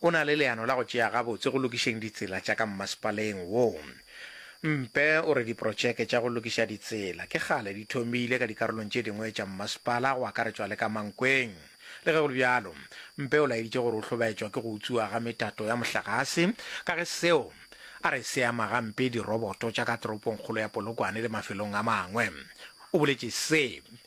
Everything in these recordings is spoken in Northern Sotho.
O na le leano la go tšea gabotse go lokišeng ditsela tša ka mmasepaleng wo. Mpe o re diprotšeke tša go lokiša ditsela ke kgale di thomile ka dikarolong tše dingwe tša mmasepala go akaretšwa le ka Mankweng. Le ge go le bjalo, Mpe o laeditše gore o hlobaetšwa ke go utswiwa ga metato ya mohlagase ka ge seo a re se ama gampe diroboto tša ka toropongkgolo ya Polokwane le mafelong a mangwe. O boletše se.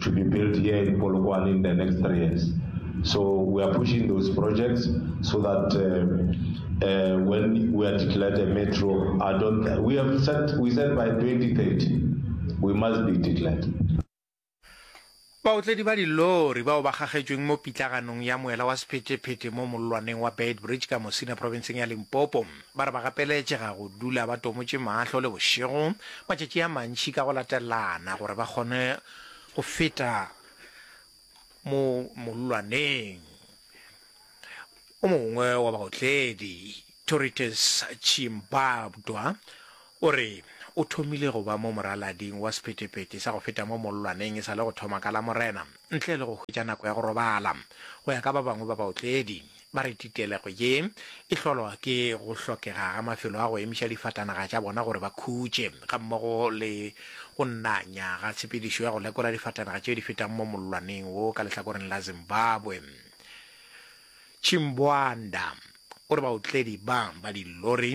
to be built here in Polokwane in the next three years. So we are pushing those projects so that uh, uh, when we are declared a metro, I don't. We have set. We said by 2030, we must be declared. baotledi ba dilori bao ba gagetšweng mo pitlaganong ya moela wa sephetephete mo mollwaneng wa beitbridge ka mosina provinceng ya limpopo Ba re ba gapeletšega go dula ba tomotše mahlo le bošego matšatši a mantši ka go latelana gore ba kgone go feta mo mollwaneng o mongwe wa baotledi, Toritus Chimbabdwa, o re o thomile go ba mo moralading wa sephetepete sa go feta mo mollwaneng e sa le go thoma ka Lamorena ntle le go hwetša nako ya go robala. Go ya ka ba bangwe ba baotledi, Ba re titelego ye e hlolwa ke go hlokega ga mafelo a go emiša difatanaga tša bona gore ba khutše, gammogo le go nanya ga tshepedišo ya go lekola difatanaga tše di fetang mo mollwaneng wo ka lehlakoreng la Zimbabwe. Chimbwanda o re baotledi ba ba dillori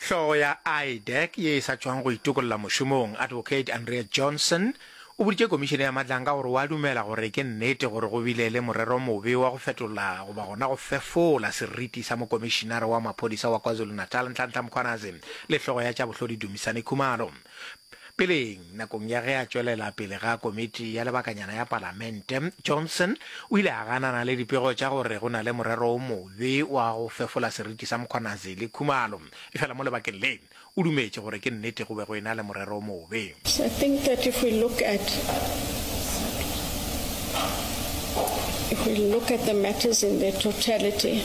Hlogo ya IDEC ye e sa tšwang go itokolla mošomong, Advocate Andrea Johnson, o boditše komišene ya Madlanga gore o a dumela gore ke nnete gore go bile le morero mobe wa go fetola goba gona go fefola seriti sa mokomišenare wa maphodisa wa KwaZulu-Natal Nhlanhla Mkhwanazi le hlogo ya tša bohlodi Dumisani Khumalo. Peleng, nakong ya ge a tšwelela pele ga komiti ya lebakanyana ya Palamente, Johnson o ile a ganana le dipego tša gore go na le morero o mobe wa go fefola seriti sa Mkhwanazi le Khumalo. Efela mo lebakeng le, o dumetše gore ke nnete go be go ena le morero o mobe. I think that if we look at if we look at the matters in their totality,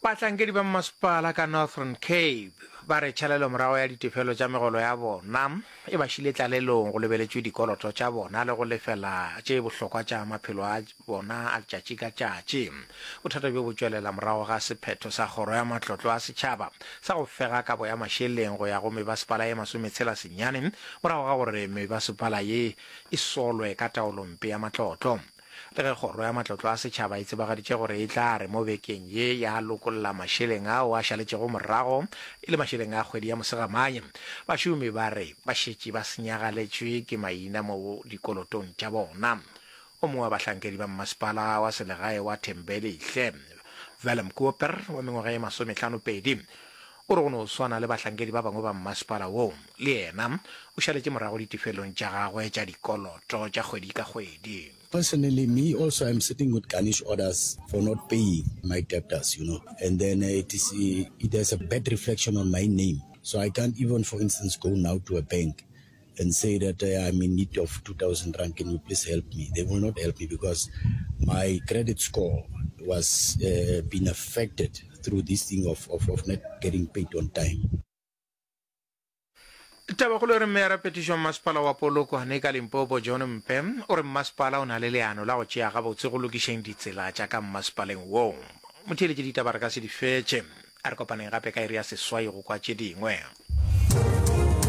Bahlankedi ba mmasepala ka Northern Cape ba re tšhalelomorago ya ditefelo tša megolo ya bona e ba šile tlalelong go lebeletšwe dikoloto tša bona le go lefela tše bohlokwa tša maphelo a bona a letšatši ka tšatši. Bothata bjo bo tšwelela morago ga sephetho sa Kgoro ya Matlotlo a Setšhaba sa go fega kabo ya mašeleng go ya go mebasepala ye masometshela senyane morago ga gore mebasepala ye e solwe ka taolompe ya matlotlo. Le ge Kgoro ya Matlotlo a Setšhaba e tsebagaditše gore e tla re mo bekeng ye ya lokolla mašeleng ao a šaletšego morago, e le mašeleng a kgwedi ya Mosegamane, bašomi ba re ba šetše ba senyagaletšwe ke maina mo dikolotong tša bona. O mongwe wa bahlankedi ba mmasepala wa selegae wa Thembelihle, Willem Koper, wa mengwaga ye masomehlano pedi, O re go no swana le bahlankedi ba bangwe ba mmasepala wo, le yena o šaletše morago ditefelong tša gagwe tša dikoloto tša kgwedi ka kgwedi. Personally, me also I'm sitting with garnish orders for not paying my debtors, you know, and then it is it has a bad reflection on my name, so I can't even for instance go now to a bank and say that uh, I'm in need of 2,000 rand. Can you please help me? They will not help me because my credit score was uh, being affected through this thing of, of, of not getting paid on time. tabakgolo e re mme ya rapetišong masepala wa polokwane ka limpopo john mpe o re mmasepala o na le leano la go tšea gabotse go lokišeng ditsela tša ka mmasepaleng woo motheeletše ditaba re ka se di fetše a re kopaneng gape ka iri ya seswai go kwa tše dingwe